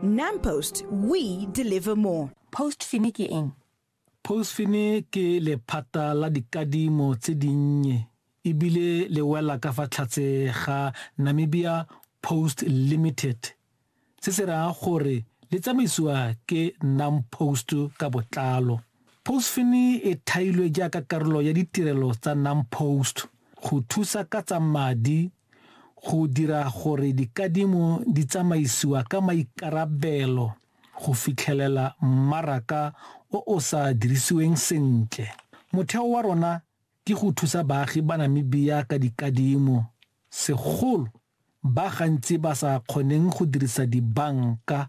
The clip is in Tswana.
NamPost, we deliver more. Postfini ke eng? Postfini ke lephata la dikadimo tse dinnye ebile le wela ka fa tlhatse ga Namibia Post Limited se se raya gore le tsamaisiwa ke NamPost ka botlalo. Postfini e thailwe jaaka karolo ya ditirelo tsa NamPost go thusa ka tsa madi go dira gore dikadimo di tsamaisiwa ka maikarabelo go fitlhelela mmaraka o o sa dirisiweng sentle. Motheo wa rona ke go thusa baagi ba Namibia ka dikadimo, segolo ba gantsi ba sa kgoneng go dirisa dibanka,